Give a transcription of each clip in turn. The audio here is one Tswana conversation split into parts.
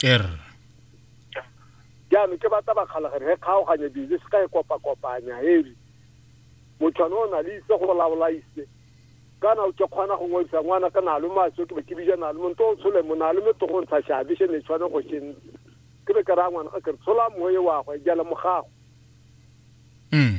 er jaanong ke batla bakgalagane ge kgaoganye dijo se ka e kopa-kopanya heri motho ane o na le itse go laola ise kana o ke kgona go ngwadisa ngwana ka nalo maso ke be ke bija nalo mo nto o tshole mo nalo mo togo ntsha shabe she ne tshwana go shen ke be ka ra ngwana ka ke tshola moye wa go jala mogago mm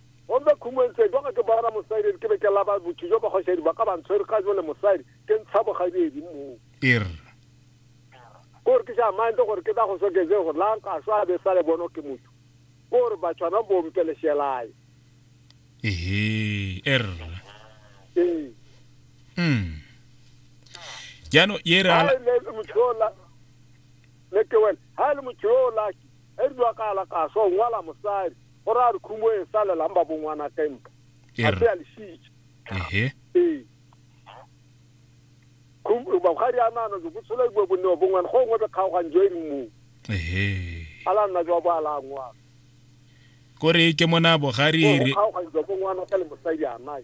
Gomme khumong se, jwa go ke boela mosadi, ke be ke laba botho jo bagoshadi ba ka ba ntshwere ka jole mosadi, ke ntsha bogadiedi moo. Ir. Kore ke sa mande gore ke tla go sokeze gore la nka swa be sa le bono ke motho. Kore ba tshwana bo mpe le shelai. Ehe, er. Ee. Mm. Jano, ye re ala. Ha le le motho yo la, le ke wena, ha le motho yo la, e dwa ka ala ka swa, ngwala mosadi. go ra re khumo e salelang ba bongwana kae mpa a se a lesitse ehe ee khumo ba ga ri anana jo botshelo bo bonne bo ngwana go ngwe be kgaogang jo e re mo ehe ala nna jo ba ala ngwa kore ke mona bogari re kgaogang jo bo ngwana ka le mosadi a nai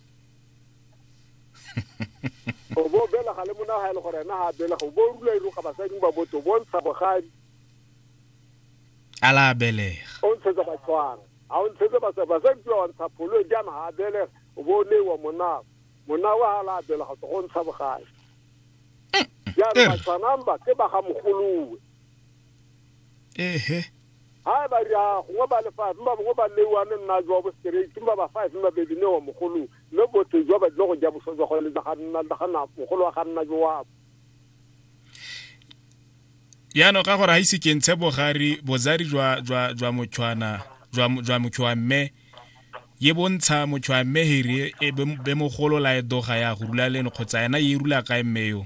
o bo belega le mona ga e le gore ena ga a belega o bo o rula iroga basading ba botse o bo ntsha bogadi a la a belega o ntshetse batshwana ga o ntshetse basadi basadi pia wa ntsha pholo e jaana ga a belega o bo o neiwa monago monago ga a la a belega tso go ntsha bogadi jaana batshwanang ba ke ba ga mogolowe ehe ha ba ri a gongwe ba le five mba bongwe ba leiwane nna jwa bo straight mba ba five mba baby ne wa mogolo mme botho jwa ba dilo go ja boswa jwa go le ga nna ga na mogolo wa ga nna jo wa ya no ka gore ha ise ke ntshe bogari bozari jwa jwa jwa motshwana jwa jwa motshwa mme ye bontsha motshwa mme hiri e be mogolo la e doga ya go rula le kgotsa yena ye rula ka mme yo